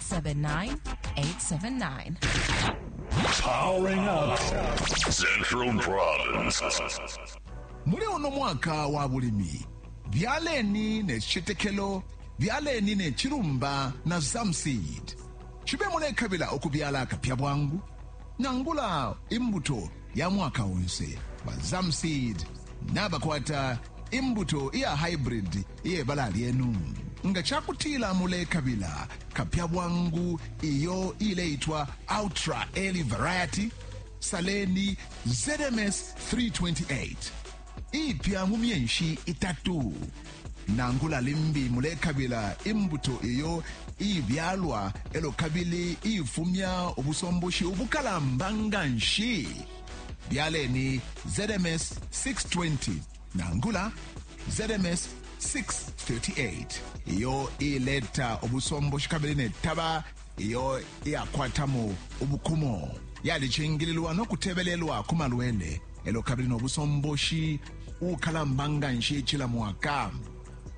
79879. Powering up Central Province. muli uno mwaka wa bulimi byaleni ne citetekelo byaleni ne cilumba na zamseed cibe mulekabila ukubyala akapya bwangu nangula imbuto ya mwaka onse ba zamseed nabakwata imbuto iya hybrid Iye bala lyenu. Nga ca kutila mulekabila kapya bwangu iyo iileitwa Ultra Early Variety, saleni ZMS 328, iipya mu myeshi itatu. Nangula limbi mulekabila imbuto iyo iibyalwa e lyo kabili iifumya ubusomboshi ubukalamba nga nshi, byaleni ZMS 620. nangula zms 638 iyo ileta ubusomboshi kabili netaba iyo iyakwatamo ubukumo yalicingililwa no kutebelelwa ku malwele elo kabili no busomboshi ukalamba nga nshi cila mwaka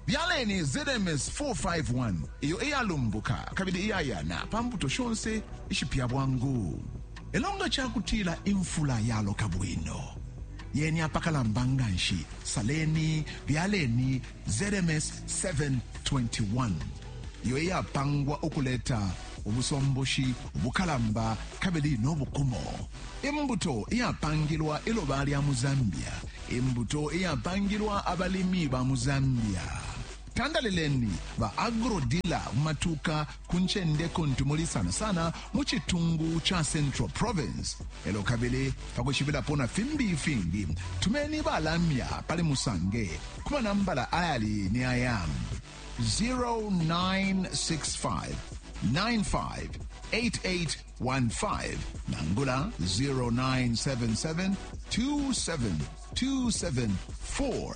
byaleni zms 451 iyo iyalumbuka kabili iyayana pa mbuto shonse ishipya bwangu elo nga cakutila imfula yaloka bwino yeni apakalamba nga nshi, saleni, byaleni ZMS 721, iyo iyapangwa ukuleta ubusomboshi bukalamba kabili no bukumo, imbuto iyapangilwa iloba lya mu Zambia, imbuto iyapangilwa abalimi ba mu Zambia. Tandalileni ba agrodila matuka ku ncende kuntu muli sana sana mu citungu ca Central Province. Elo kabili pakushibilapo na fimbi ifingi tumeni balamya pali musange ku manambala ayali ni aya 0965 958815 nangula 0977 2727